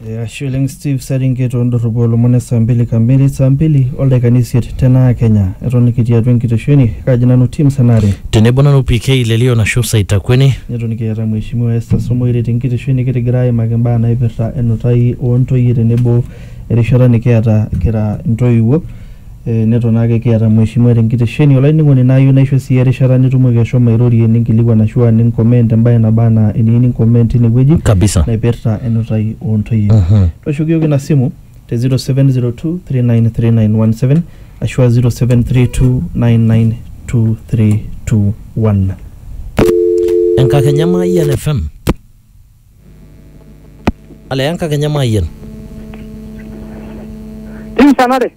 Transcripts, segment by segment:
Eh, Ashe oleng Steve Seringet ondorropu olomon e saa mbili kamili saa mbili oldaikani isiet tenaa Kenya. Eton kitii atua enkitesheni kaji nanu Tim Senare. Tenebo nanu PK Lelion ashu Saitakweni. Neton kiata Mheshimiwa Esther Somoire te nkitesheni kitigira aimaki imbaa naipirta enutai oo ntoyie tenebo erishata nikiata kira intoiwuo. eh, neton ake kiata mheshimiwa tenkitesheni olainining'oni naayieu naisho sii erishata nitumoki ashomo airorie ninkilikuan ashu aa ninkoment embae naba anaa eniyieu ninkoment tine wueji Kabisa. naipirta enutai oo ntoyie Mhm. tooshoki iyiook ina simu te 0702393917 ashu aa 0732992321 Enkakenya Mayian FM. Ale Enkakenya Mayian. Tim Sanare.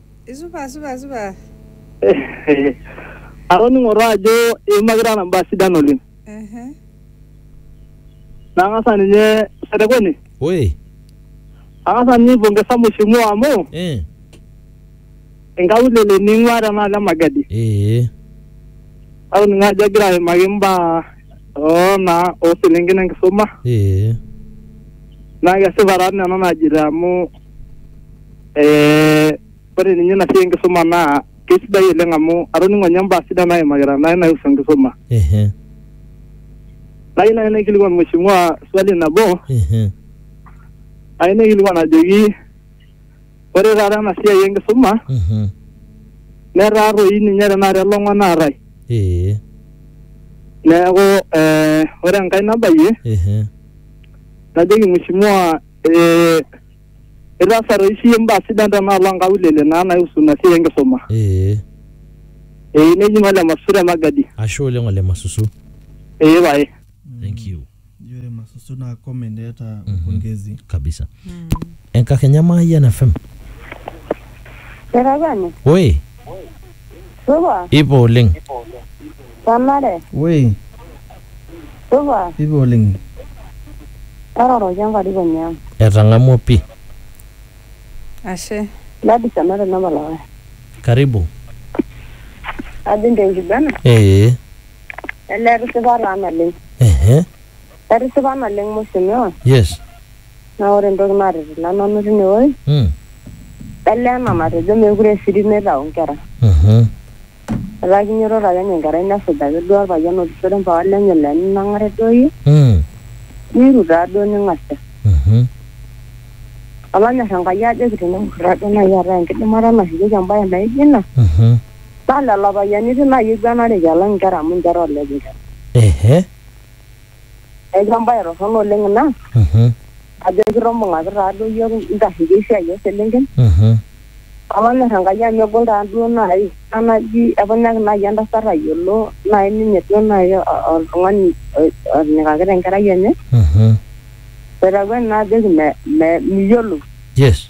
Isupa, supa, supa. Atoning'o taa ajo iimakita nena baa sidan oleng. Ehe. Nang'asa ninye Setekweni, Oi. ang'asa ninye aipongesa mheshimiwa amu Eh. inkaulele ning'ua tenaalo e Magadi. Eh. Atoning'o ajo egira aimaki imbaa oo naa oo selenken enkisuma Eh. naa kesipa taa nena naajito amu Eh, ore ninye ina siai enkisuma naa keisidai oleng amu atoning'o ninye imbaa sidan naimakita naai naihusu enkisuma. Ehe. Nayieu naai naikilikuan mheshimiwa swali nabo, Ehe. ayieu naikilikuan ajoki ore taata ena siai enkisuma Mhm. netaa toi ninye tenakata elong'o naatae. Ee. Neeku eh, ore enkae nabayie Ehe. najoki mheshimiwa eh, itaasa toi siyie imbaa sidan tenaalo onkaulele naa naihusu ina siai enkisuma ee ee neji ng'ole masusu te magadi ashe oleng ole masusu ee pae Thank you. Ijo ore masusu naa comment eeta pongezi. kabisa enkakenya maayian fm Etabani, oi supa, ipo oleng tanare, Woi. Supa. Supa oleng. Taroroki enkarikoni ang. Etang'amua pi. Ashe. Gladys ena te Napalawai. Karibu. Ajing te nkiguena. Ee. Elee etisipa taa naleng. Ehe. Etisipa naleng mheshimiwa. Yes. Naa ore entoki natitila nanu tine woi. Mm. Elee ena natejo meekure esirit neitau nkera. Mhm. Etaa kinyototo ake ninye enkerai nesuj ake duo olpayian otishore mpapa lenye le ninang'are duo iyie, Mm. niru taa duo ning'asia. Mhm. Olonyor Enkai ajoki teneng'or taa duo naaji eetae enkidimata nashukieki embae naijo ina, Mhm. naa lelo payiani etiu naaji eiguanareki alang inkera amu ninche etaaleleki inkera. Ehe. Neeku embae torrono oleng ina. Mhm. ajo enkitobung'aki taaduo iyiok intarriki esiai ooselenken Mhm. olonyor Enkai amu egol taaduo naaji ena naji epunyaki naaji entasat ayiolo naaji ninye duo naaji o- o- oltung'ani o- onyikaki tenkerai enye Mhm. etakueni naa ajoki me- me- miyiolou Yes.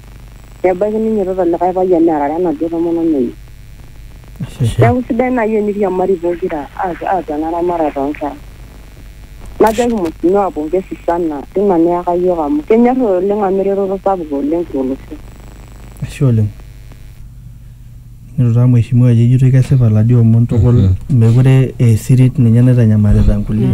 Nebaiki neinyototo likae payian nearare enaduo tomononi enye. Neaku sidai naaji eniriamari pokira aas ena ramatare oo nkera. Najoki mweshimiwa pongesi sana teina niyaka iyiook amu kenyorr oleng amu eretoto sapuk oleng to losho. Ashe oleng. Neitu taa mheshimiwa ajo ejitoi kesipa lajo omon tukul mekure aa esirit ninye naitanyamalita nkulie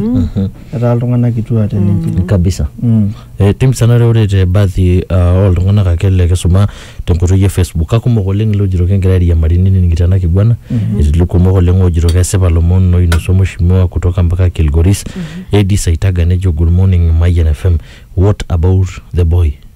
etaa iltung'anak kituak te ninche. kabisa Mm. Eh, tim sanare ore te baadhi uh, oltung'anak ake le kisuma tenkoitoi e facebook kakumok oleng iloojito kingira airiamari nening'ito ena kiguana etii ilkumok oleng oojito kesipa lomon oinasua mheshimiwa kutoka mpaka kilgoris Edie saitaga nejo good morning mayian fm what about the boy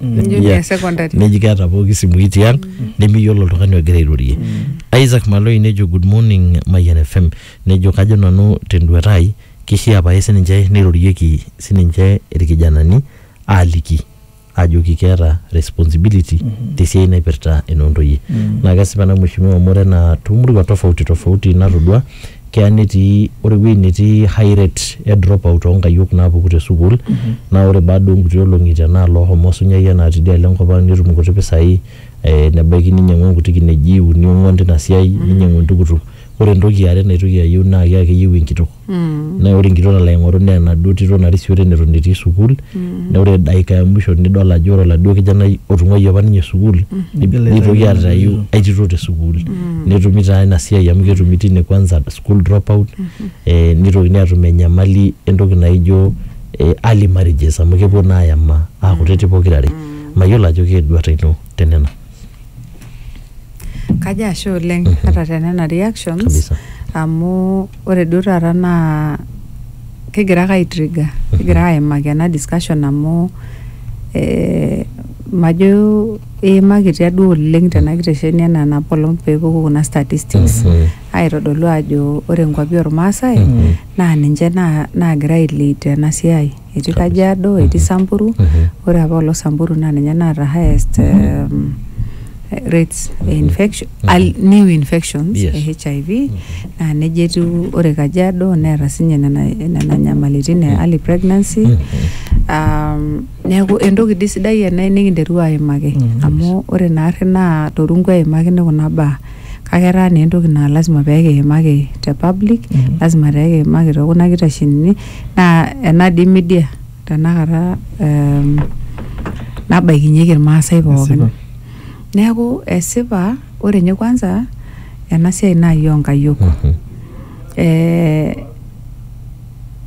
Junior Yeah. secondary. neji keeta pooki simui tiang nemiyiolo oltung'ani ogira airorie isaac maloi nejo good morning mayian fm nejo kajo nanu tenduata ai kishaa pae sininche neirorieki sininche irkijanani aaliki ajoki keeta responsibility tesiai naipirta enoontoyie naa kesipa ena mheshimiwa amu ore enaa toomurua tofauti tofauti natodua keya netii ore ewueji netii high rate e drop out onkayiok naapuku te sukuul naa ore baada onkuti olong'i tenaalo ohomo osunyai enaa tidialo enkop ang netum inkuti pisai eh, nebaiki ninyiang'u inkuti kineji uni ong'uan tina siai ninyiang'u entukutuk ore entoki iare naitoki ayieu naa keya keyieu enkitok naa ore enkitok nalo aing'oru naa enaduo tito narisiore neton etii sukuul. mm. na ore daika ya mwisho nidol ajo ore oladuo kijanai otung'uayie apa ninye sukuul mm. nitoki atayu aitito te sukuul mm. netumi taa ina siai amu ketumi tine kwanza school dropout mm -hmm. eh, nitokini atum enyamali entoki naijo eh, early marriages amu kepuo naa ayama aakutiti mm. pokirare mm. mayiolo ajo keeduata ino tenena Kajo ashe oleng ata te nena reactions Kabisa. amu ore duo taata naa kigira ake aitriga kigira aimaki ena discussion amu eh, majo eimakitia duo oleng tena kitesheni enaa enapaelong peepuku kuna statistics Mhm. aitodolu ajo ore nkuapi ormaasai Mhm. naa ninche naa- naagira ailid tena siai etii Kajiado, etii Samburu. Ore apa olo Samburu naa ninye naata highest um, rates e infection, al- new infections Yes. e HIV naa neja etiu ore Kajiado neeta sinye nena, nena nyamalitin e early pregnancy. Um, neeku entoki dii sidai ena nikinterua aimaki amu ore naarri naa torungu eimakini kuna baa. kake etaa naa entoki naa lazima pee kiimaki te public, lazima pee kiimaki too kuna kitashenini naa ena dii media tenakata ehm, nabaikinyeki irmaasai pookin. Esipa. Neeku esipa ore ninye kwanza ena siai naaji oo nkayiok. Eh,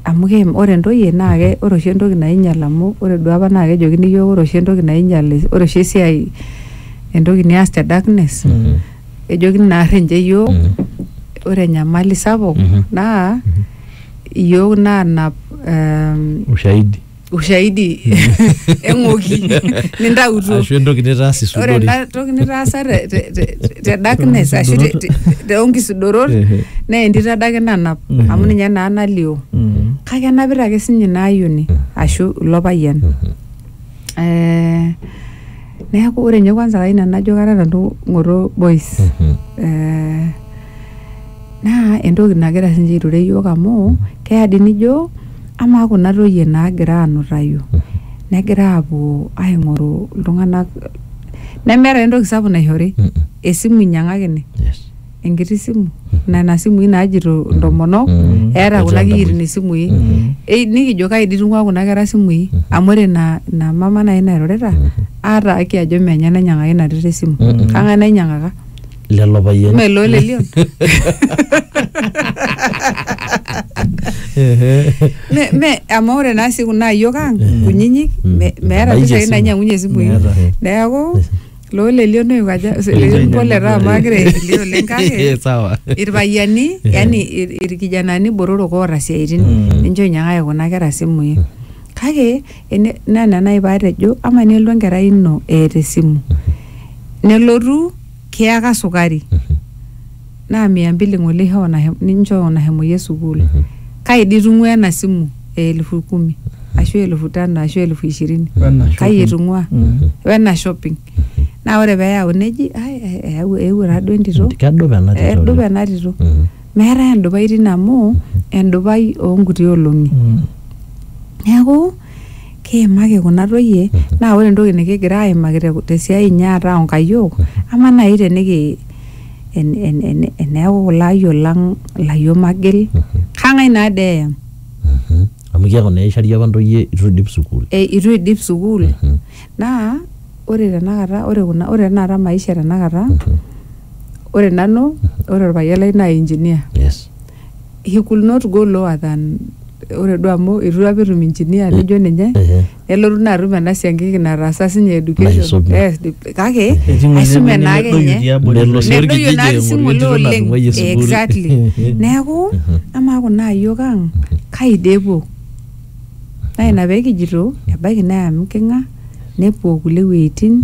amu keim ore ntoyie naa ke ore oshi entoki nainyal amu ore duo apa naa kejokini iyiook ore oshi entoki nainyal ore oshi esiai entoki nias te darkness Mhm. ejokini naarr ninche iyiook Mhm. ore enyamali sapuk Mhm. naa iyiook naanap ehm, ushahidi ushaidi eng'oki nintautuo ashu entoki nitaas ore isudori ena toki nitaasa te- te- te- te darkness ashu te- te- toonkisudorot Ehe. naa entito adake nanap Mhm. amu ninye naa nalio Mm. kake enapita ake sinye ina ayioni ashu ilo payian Eh, neeku ore ninye kwanza kai nanu najo kata nanu ng'oto boys Eh, naa entoki nagira sinche aiture yiok amu keya dii nijo amaa kuna toyie naagira anutayu negira apuo aing'oru iltung'anak nemeeta entoki sapuk naishori Mm. esimu inyiang'akini Yes. enkiti simu nena simui naajito intomonok Mm. eeta kuna Ejo kiyitin entoki. isimui Mm. Ei, nikijo kai dii itung'ua kuna kera simui amu ore ina ina mama nai nairorita aata aki ajo menye nainyiang'aka ina tito esimu Mm. kang'ae nainyiang'aka lelo payiani Mme loo lelion. Ehe. Me, me, amu ore naa sii kuna ayiok ang kunyinyik me- meeta Mebaiki mpisai esimu. nainyang'unye isimui Meeta. neeku loo lelion noyu kaja lelion pole taa amu agira aikilie oleng kake sawa irpayiani yani ir- irkijanani botorok oota siaitin ninche oinyiang'aki kuna kera simui kake ene- naa ina naaji paatejo ama nelo enkerai ino eeta esimu nelotu kiyaka sukari naa mia mbili ng'ole ishoo nahe- ninchoo nahemoyie sukuul kai dii itung'ua ena simu e elfu kumi ashu elfu tano ashu elfu ishirini Wena kai shopping. itung'ua Mm. wena shopping naa ore peeyau neji "Ai, eh, eyau- eewuo taaduo entito kedup ena tito edup oleng. ena tito Mhm. meetae endupai tine amu endupai oonkuti olong'i Mm. neeku kiimaki kuna toyie naa ore entoki nikigira aimaki te- tesiai inyi ataa onkayiok ama naaji teniki en- en- en- eneeku kulo ayiok lang ilayiok magil kang'ae naa dee eyam Mhm. amu keeku naa eishari apa ntoyie itu idip sukuul e, itu idip sukuul Mhm. naa ore tenakata ore kuna ore tenakata maisha tenakata ore nanu ore orpayian lai naa engineer yes he could not go lower than ore duo amu itu apa etum engineer lijo ninye Ehe. nelotu naa atum ena siankiki nataasa sinye education Naisume. Yes, di- kake Etii ng'ole aisume nemedoyio naake ninye tiabori Nelo sii oleng. nedoyio orkijiji naa aing'oru sing'ole entito oleng natung'uayie sukuul. exactly neeku amaa kuna ayiok ang kai dee epuo naa ina pee kijito ebaiki naa amu king'a nepuo kulie wueitin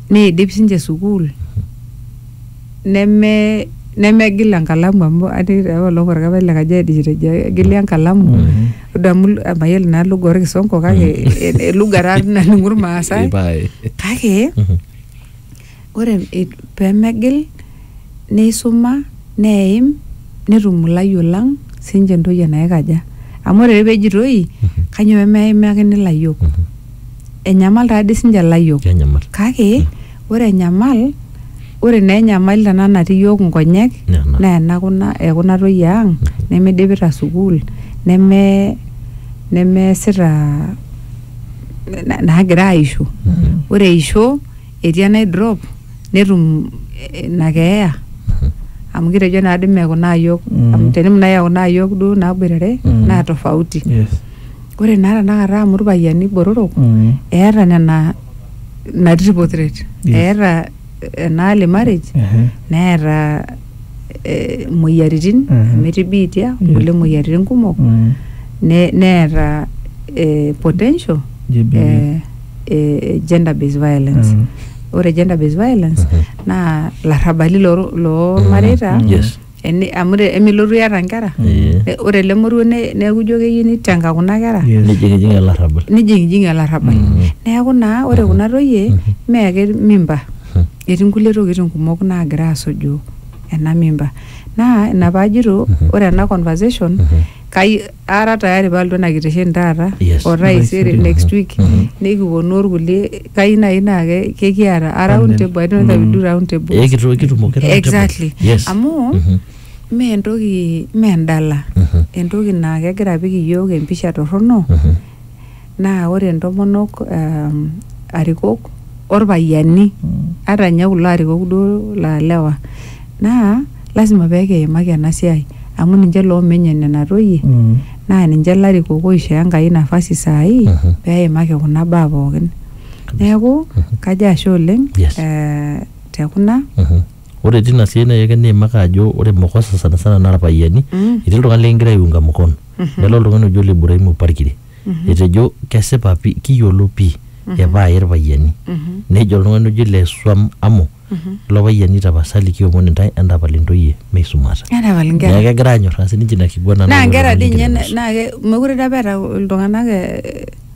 Neidip sinche sukuul neme nemegil enkalamu amu atii taa olong orkapai le Kajiado ejo etejo egili enkalamu idamu mayiolo naa lugha orkisongo kake e- e- lugha taa naning'u irmaasai Ipae. kake ore i- pemegil neisuma neim netum ilayiok lang sinche entoki enaikaja amu ore pejitoi kanyoo pemeimakini ilayiok enyamal taadi sinche ilayiok Kenyamal. kake ore enyamal ore naa enyamali tenaa natii iyiok inkonyek Naa ena. naa ena kuna ekuna toyie ang nemidipita sukuul neme nemeesita na- naagira aisho ore eisho etii enai drop netum eh, ina keeya amu kitejo naa dime kuna ayiok Mm. amu tenim nai kuna ayiok duo naboitare Mm. naa tofauti Yes. ore naa tanakata amu irpayiani botorok Mm. eeta nena ina triple threat Yes. eeta ena early marriage Ehe. neeta eh, imoyiaritin Mhm. amu etii biitia Yes. nkulie moyiaritin kumok Mm. ne- neeta eh, potential JBV. eh, eh, gender based violence Mm. ore gender based violence naa larrabali loo- loormareita Mm. Yes. Eni- amu te- emilotu iyata nkera Eh. Ne- ore ele moruo ne- neeku ijo keyieu nitenga kuna kera Yes. nijingijingi olarrabal nijingijingi olarrabal neeku naa ore kuna toyie mee ake mimba etii nkulie tokitin kumok naagira asuju ena mimba naa ina paajito ore ena conversation kai ara tayari palotu ena kitesheni taata Yes. o taisere Taisere, next aha. week Mhm. nikiponu orkulie kai nai naa ke- kekiata a round Panel. table I don't know if we do round table Eh, kitu- kitumoki round table. exactly Yes. amu Mhm. mee entoki mee endala Mhm. entoki naa kegira apik iyiook empisha torrono Mhm. naa ore ntomonok um, arikok orpayiani ata ninye kulo arikok duo laa lewa naa lasima pee kiimaki ena siai amu ninche loomenye nena toyie Mm. naa ninche larikok oishoo Enkai nafasi saai Mhm. pee eimaki kuna baa pookin. Neeku kajo ashe oleng Yes. eh, te kuna Mhm. ore tina siai naaji ake niimaka ajo ore mokosa sana sana naa irpayiani Mm. etii iltung'anak likingira aiunga mkono nelo oltung'ani oji ole Ibrahimu Parkiri etejo kesipa pi kiyiolo pii epaaye irpayiani nejo oltung'ani oji le Swam Amu ilo payiani tapasali kiomon intae entapal intoyie meisumata Entapal neeku inkera. kegira anyorraa sininche ina kiguana Naa napuo nkera dii iltung'ani ninche ninye na- naa ke- mekure dii apa eeta iltung'anak eh,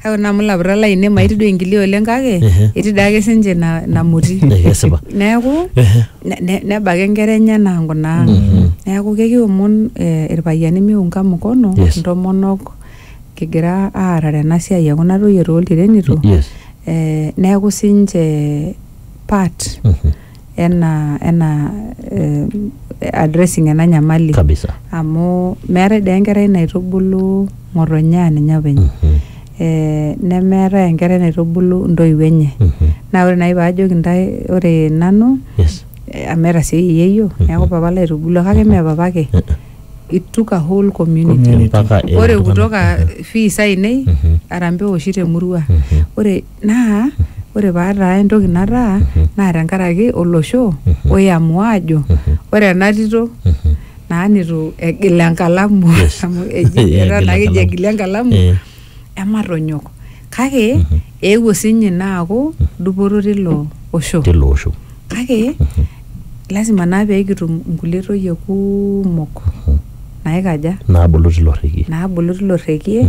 kake ore naa amu ilapurrak lainei maiti duo enkilia oleng kake Ehe. etii daake sinche ina ina moti Eh, kesipa neeku Ehe. ne- ne- neba ake nkera enyena ang kuna ang neeku kekiomon eh, irpayiani miunga mkono Yes. intomonok kigira aarare ena siai e kuna toyie tooltirenito yes eh, neeku sinche part Mhm. ena ena eh, addressing ena nyamali kabisa amu meetae dee enkerai naitubulu ng'otonye aa ninye openy Mhm, eh, nemeetae enkerai naitubulu ntoiwuo enye mhm. naa ore naaji paajoki ntae ore nanu yes eh, amu etasioyie yeyio neeku papa laitubulua kake mee papa ake Eh, eh. it took a whole community Community. Mpaka ore iltung'anak. kutoka fees ainei Mhm. arambe oshi temurua Mhm. ore Naa ore paataa entoki nataa naa tenkaraki olosho oiamua aajo ore ena tito naa neitu egil enkalamu amu eji etaa naa keji egila enkalamu ematonyok. Kake eewuo siinye ina aaku dupoto tilo osho. Tilo osho. Kake lazima naa peekitum inkulie toyie kuumok naikaja? Naabulu tilo rrekie. Naabulu tilo rrekie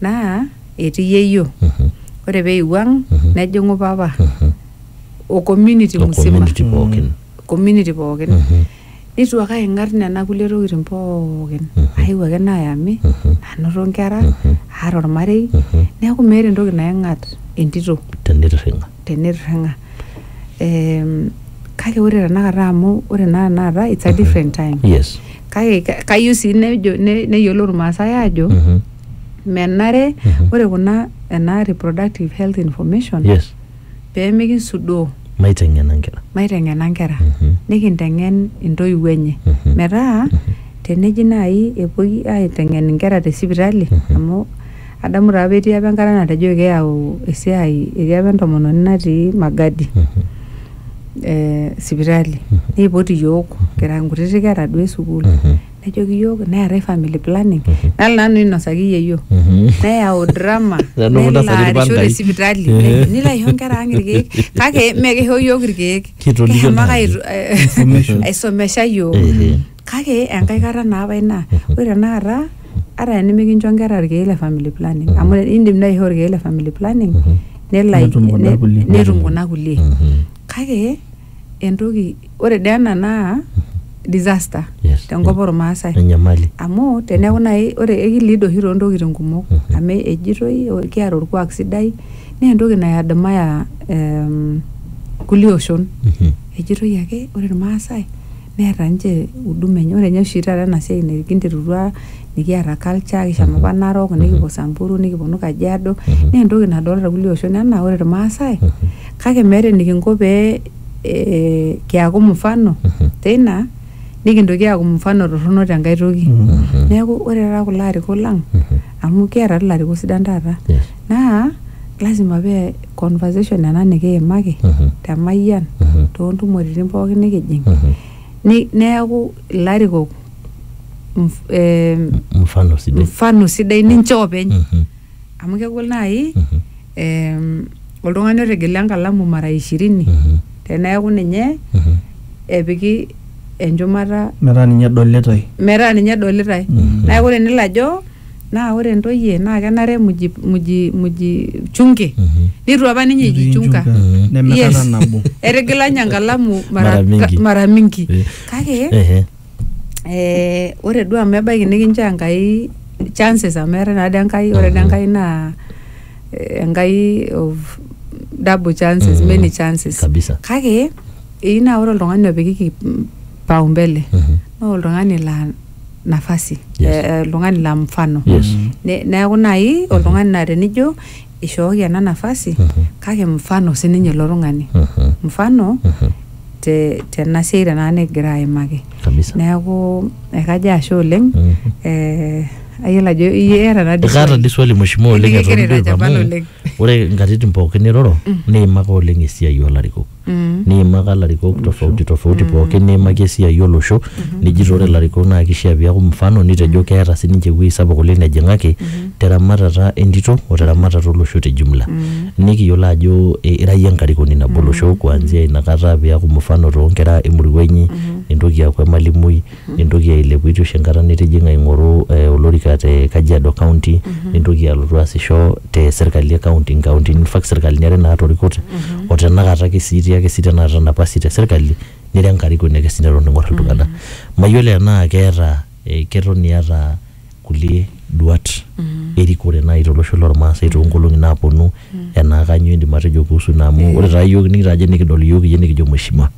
naa etii yeyio Mhm. ore peewuo ang Mhm. nejing'u papa Mhm. o community O musima community pookin. community pookin Mhm. nitu ake aing'at nena kulie tokitin pookin Mhm. aewuo ake naayami Mhm. anoto nkera Mhm. aata ormarei Mhm. neeku meeta entoki naing'at entito Tenirring'a. tenirring'a Em, kake ore tenakata amu ore naa tenakata it's a different time Yes. kake ka- kayieu sii nejo ne- neyiolou irmaasai aajo Mhm. menare Mhm. ore kuna ena reproductive health information yes peemikisudoo maiteng'ena nkera maiteng'ena nkera Mhm. nikinteng'en intoiwuo enye Mhm. metaa teneji naaji epuoi aiteng'en inkera te sipitali Mhm. amu Adamu taa apa etii apa enkata natejoki keyau esiai etii apa entomononi natii Magadi eh, sipitali neipot iyiok kira nkutiti kera duo esukuul nejoki iyiok neetae family planning nalo nanu ainosaki yieyio neyau drama Nanu nelo ntasati arisho irpandai. te sipitali Eh. nilo aisho nkera ang irkeek kake mee kisho iyiok irkeek Kitolikio kishomo ake naaji. aitu- eh, Information. aisomesha iyiok Ehe. kake enkae kata naa apa ina ore tenakata ata enimikincho nkera irkeek le family planning amu indim naaji aishoo irkeek le family planning nelo ai- Netum kuna ne- kulie. netum kuna kulie Mhm. kake entoki ore dee ena naa disaster Yes. tenkop ormaasai enyamali amu teneeku naaji ore ekiliid oshi toontokitin kumok Mhm. amu ejitoi o- kiata orkuak sidai naa entoki nayadmaya em, kulie oshon Mhm. ejitoi ake ore irmaasai neeta ninche huduma enye. Ore ninye oshi taata ena siai nikinterutua nikiata culture kishomo apa Narok nikipuo Samburu nikiponu Kajiado naa entoki nadolita irkulie oshon enaa ore irmaasai kake meeta enikinko pee eh kiaku mfano teina nikintoki aaku mfano torrono tenkae toki. Neeku ore taata kulo arikok lang amu kiata tii ilarikok sidan taata. naa lazima pee conversation ena nikiimaki Mhm. te mayian Mhm. toontumoritin pookin nikijing Mhm. Ni- neeku ilarikok mf- em, mfano sidai mfano sidai ninche openy Mhm. amu kegol naaji Mhm. em, oltung'ani otigila enkalamu mara ishirini Mhm. teneeku ninye Mhm. epiki enchumata metaa ninye edolitoi metaa ninye edolitae Mhm. neeku tenelo ajo Naa ore ntoyie naa kenare muji muji muji chunge neitu apa ninye Netii ijichunga nchunga. Neme yes kata nabo. etigila ninye enkalamu mara, Mara mingi. mara mingi Eh. kake Ehe. eh, ore duo amu ebaiki nikinchoo Enkai chances amu eetae naa dii Enkai ore dii Enkai naa eh, Enkai of double chances Mhm. many chances Kabisa. kake eyieu naa ore oltung'ani opikiki paumbele Mhm. naa oltung'ani laa nafasi Yes. eh, eh, oltung'ani la mfano Yes. Ne- neeku naaji oltung'ani naa tenijo ishooki ena nafasi Mhm. kake mfano sininye ilo tung'ani Mhm. mfano Mhm. te tena siai tenaa nikigira aimaki kabisa neeku ekajo ashe oleng Mhm. eh, ayiolo ajo iata nadi ekaata di swali mheshimiwa oleng Nikigira eton duo aitanyamal amu oleng. ore nkatitin pookin niroro niimaka oleng esiai olarikok niimaka ilarikok tofauti tofauti pookin niimaki esiai olosho nijito ore ilarikok naa kishia piaku mfano nitejo keeta sininche ewuei sapuk oleng nejing'aki teramatata entito oteramatata olosho te jumla nikiyiolo ajo eh, ira iyie enkarikoni nabo olosho kuanzia inakata piaku mfano tonkera emurua inyi nintoki aaku emalimui nintoki ailepu itu isho enkata nitijing'a aing'oru eh, olorika te Kajiado County nintoki alotu aasisho te serkali e county inkauntini in fact serkalini are naatorikote o tenakata ake sii itii ake sii tenakata napasi te serkali nira enkarikoni ake sii neton ing'or iltung'anak mayiolo enaa keeta eh, keton iyata kulie duat erikore naaji tolosho lormaasai toonkolong'i naaponu enaa kanyio indim atejo kuhusu ina amu ore taa iyiook nikitajo nikidol iyiook iyie nikijo mheshimiwa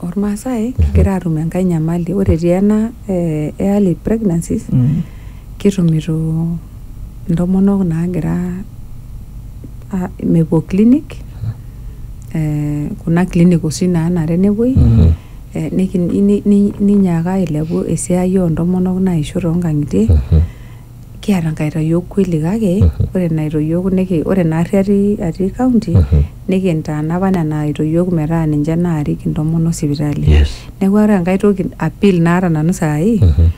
Ormaasai kigira aatum enkae nyamali ore tii ena eh, e early pregnancies Mm. kitumito intomonok naagira a- mepuo clinic eh, kuna clinic oshi naanare nepuoi Mm. eh, niki- ni- ni- ninyaaka ailepu esiai oontomonok naisho toonkang'itie Mhm. kiata nkaitoyio kweli kake ore ina aitoyio niki ore ina ari atii atii county nikintaana apa nena aitoyio metaa ninche naarik intomonok sipitali yes neeku ore enkae toki appeal naata nanu saai Mhm.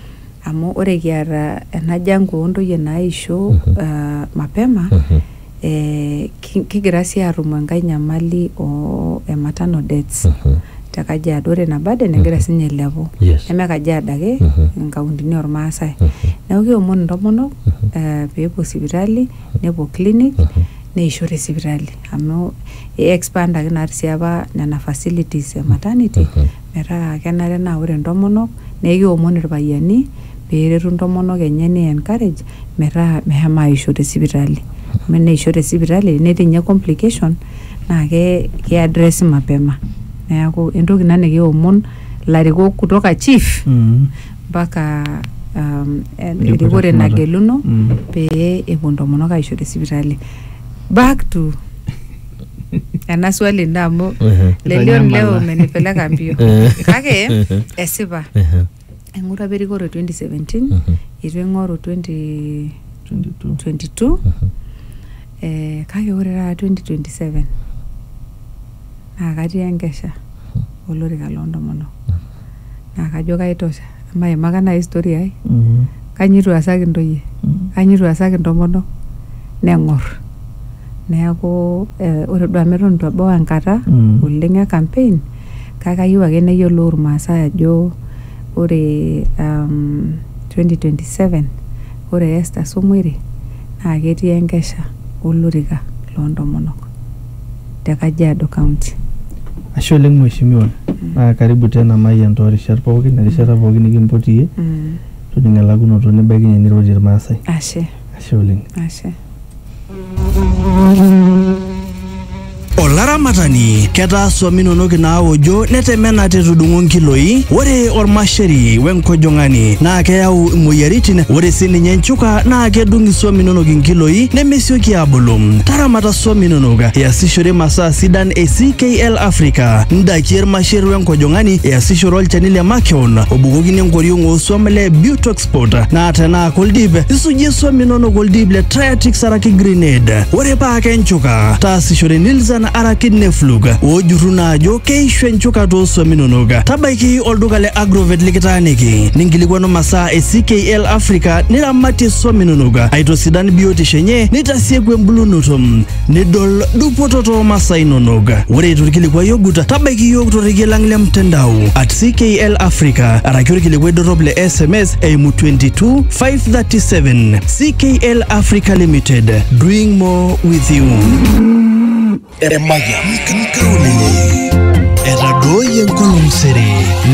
amu ore kiata ena jango ontoyie naisho ah, mapema Mhm. eh, kigira sii atum enkae nyamali oo e maternal deaths mm -hmm. te Kajiado ore ina burden negira mm -hmm. sinye ailepu yes. neme Kajiado ake mm -hmm. inkauntini ormaasai mm -hmm. neeku keomon intomonok mm -hmm. uh, peepuo sipitali mm -hmm. nepuo clinic mm -hmm. neisho te sipitali amu i expandaki naa sii apa nena facilities e maternity mm -hmm. metaa kenare naa ore intomonok naa ekeomon irpayiani peretu intomonok enye nei encourage metaa mehema aisho te sipitali amu eneisho te sipitali tenetii inye complication naa ke kei addresi mapema neaku entoki ina nikiomon ilarikok kutoka chief Mm. mpaka um, en- Erikore erikore shumata. nageluno Mm. pee epuo intomonok aisho te sipitali back to ena swali ino amu Ehe. lelion leo Itanyamala. menipeleka mbio Eh. kake Ehe. esipa Ehe. aing'ura apa erikore 2017 Mhm. itu aing'oru 20 22. 22 Mhm. eh, kake ore taata 2027 naa katii enkesha olorika loo ntomonok naa kajo kaitosha maimaka naaji story ai Mhm. kanyio eitu easaki intoyie Mhm. kanyio eitu easaki intomonok neng'or neeku eh, ore duo amu eton eitu ebau enkata Mm. oleng e campaign kake kayieu ake neyiolou irmaasai ajo ore um, 2027 ore Esther Song'uere naa ketii enkesha olorika loo ntomonok. te Kajiado County. Ashe oleng mheshimiwa mm. naa karibu tena Mayian too rishat pookin erishata mm. pookin nikimpoti iyie mm. toning elakunoto nibaikinye nirorie irmaasai ashe ashe oleng ashe olaramatani ketaa swami inonok inaawojo netemena tetudung'o nkiloi ore ormasheri wenkojong'ani naa keyau imoyiaritin ore sininye nchuka naa kedung iswami inonok inkiloi nemesioki aabulu taramata swam inonok iasishore masaa sidan e CKL Africa, ndaiki ermasher wenkojong'ani iasishore olchani le makeon obukokini enkoriong ooswam le Butoxport naa tenaa koldip isujie swam inonok oldip le Triatix araki Grenade. Ore paa kenchuka, taasishore Nilsan araki Neflug oojurru naa ajo keishu enchuka tooswam inonok. Tabaiki olduka le Agrovet likitaaniki ninkilikwanu masaa e CKL Africa niramatie swam inonok aitosidan biotisho enye nita tasieku embulunoto nidol dupoto too masaa inonok. Ore torkilikuai ogut, tabaiki iyiook torrekie lang le mtandao at CKL Africa araki orkilikuai dorrop le SMS eimu 22537 CKL Africa Limited doing more with you. Emayian. Etadooyie enkolong sere.